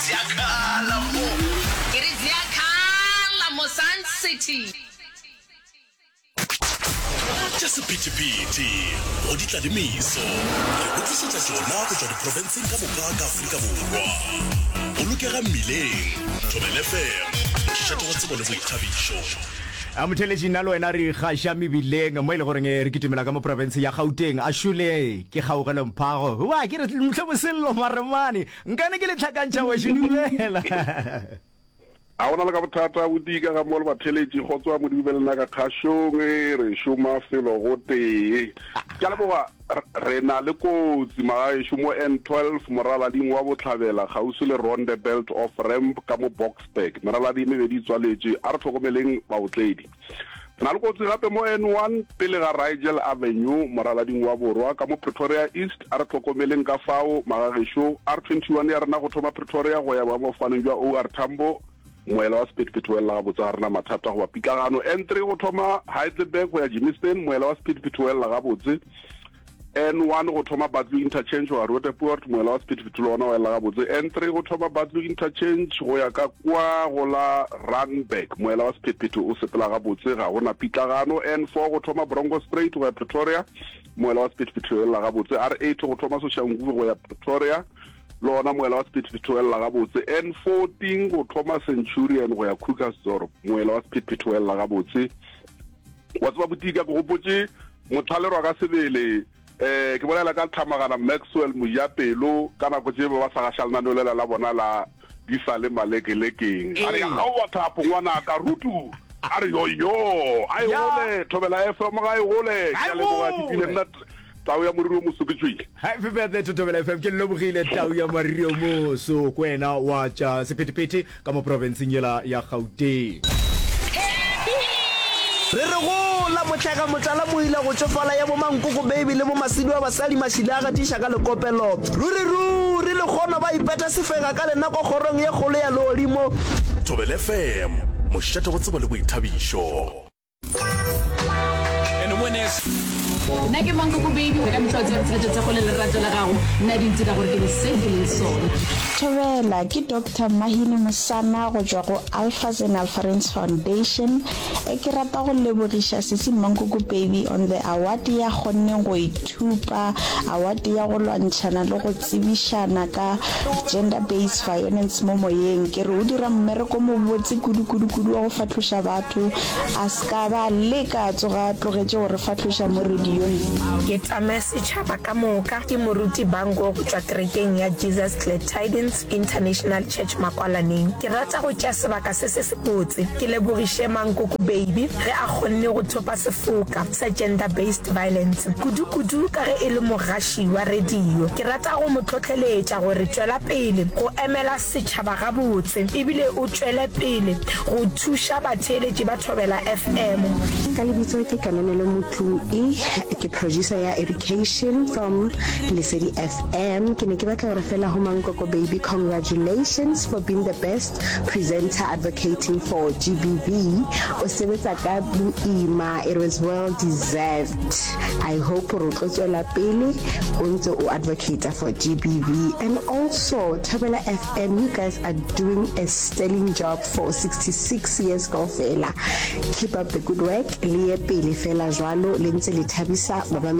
Zya khala mo. Ke ri zya khala mo Sun City. Tša sephethephethe go ditlalemiso re go tlišetša tšona go tšwa diprofenseng ka moka ka Afrika Borwa. Bolokega mmileng, Thobela FM, šetogo tsebo le boithabišo. Motheeletši nna le wena re ikgaša mebileng mo e le goreng re kitimela ka mo profense ya Gauteng. Ashule ke kgaugelo mphago. Hua ke re mhle bosello maremane. Nkane ke le hlakantšha weši dumela. A go na le ka bothata bodii ka ga mo le batheletši? Kgotswa Modimo be le na ka kgašong, re šoma felo gotee. Ke a leboga. Re na le kotsi magaešo mo N12 moralaling wa Bohlabela kgauswi le Rondebelt off ramp ka mo Boksburg. Meraladi e mebedi e tswaletše. A re hlokomeleng baotledi. Re na le kotsi gape mo N1 pele ga Rigel Avenue, moralading wa borwa ka mo Pretoria East. A re hlokomeleng ka fao, magagešo. R21 ya rena go thoma Pretoria go ya boemafofaneng jwa OR Tambo, moela wa sephethephethe o elela gabotse, ga rena mathata goba pitlagano. N3 go thoma Heidelberg go ya Germiston, moela wa sephethephethe o elela gabotse. N1 go thoma Batlu Interchange wa Roodepoort moela wa Sephethephethulo ona wa ela gabotse. N3 go thoma Batlu Interchange go ya ka kwa go la Randburg moela wa Sephethephetho o sepela gabotse ga go na pitlagano. N4 go thoma Bronco Straight go ya Pretoria moela wa Sephethephetho o elela gabotse. R8 go thoma Soshanguve go ya Pretoria le ona moela wa Sephethephetho o elela gabotse. N14 go thoma Centurion go ya Krugersdorp moela wa Sephethephetho o elela gabotse. Wa tseba botika ke gopotse Mothalerwa ka sebele, eh, ke bolela ka Tlhamagana Maxwell Mojapelo, ka nako tše ba ba sa gaša lenaneo lela la bona la Di sa le malekelekeng. A re ya kgaowa thapo ngwanaka, Rutu a re yoyo, a e gole, Thobela FM ga e gole, ke a leboga, ke bile nna Tau ya Moriri o Moso, ke tšwile. Happy birthday to Thobela FM. Ke lebogile tau ya mariri o moso ko wena wa tša sephethephethe ka mo profenseng yela ya Gauteng. Re re go la motlhega motlala moila go tšofala ya bo mankoko baby le bo masidu a basali mašila a gatiša ka lekopelo ruri ruri le kgono ba ipeta sefega ka lenako kgorong ye kgolo ya leolimo. Thobela FM, mošate go tsebo le boithabišo. nna ke mankokobedi ka metlha o tseba ditsheletso tsa go le lerato la gago nna di ntira gore ke be se ke leng sona thobela ke doctor mahini mosana go tšwa go alphas and alpharins foundation e ke rata go lebogiša sesi mankokopedi on the award ya kgonneng go Thupa awate ya go lwantšhana le go tsebišana ka Gender Based Violence mo moyeng. Ke re o dira mmereko mobotse kudu-kudu-kudu wa go fahloša batho, a se ka ba leka a tsoga a tlogetše go re fahloša mo radiong. Ke Tsamaye Setšhaba ka Moka ke Moruti Bangkok tšwa Kerekeng ya Jesus Glad Tidings International Church Makwalaneng. Ke rata go tšea sebaka se se sebotse ke lebogiše Mankoko Baby ge a kgonne go thopa sefoka sa Gender Based Violence, kudu-kudu ka ge e le mogaši wa radio. Ke rata go mo hlohleletša gore tšwela pele go emela setšhaba gabotse ebile o tšwele pele go thuša batheeletši ba Thobela FM. Ka lebitso ke Kananelo Motlung I, ke producer ya Education from Lesedi FM. Am ke ne ke batla gore fela ho mankoko baby congratulations for being the best presenter advocating for GBV o sebetsa ka boima it was well deserved I hope gore o tlo tswela pele o ntse o advocate for GBV and also Thobela FM you guys are doing a sterling job for 66 years kaofela keep up the good work le ye pele fela jwalo le ntse le thabisa ba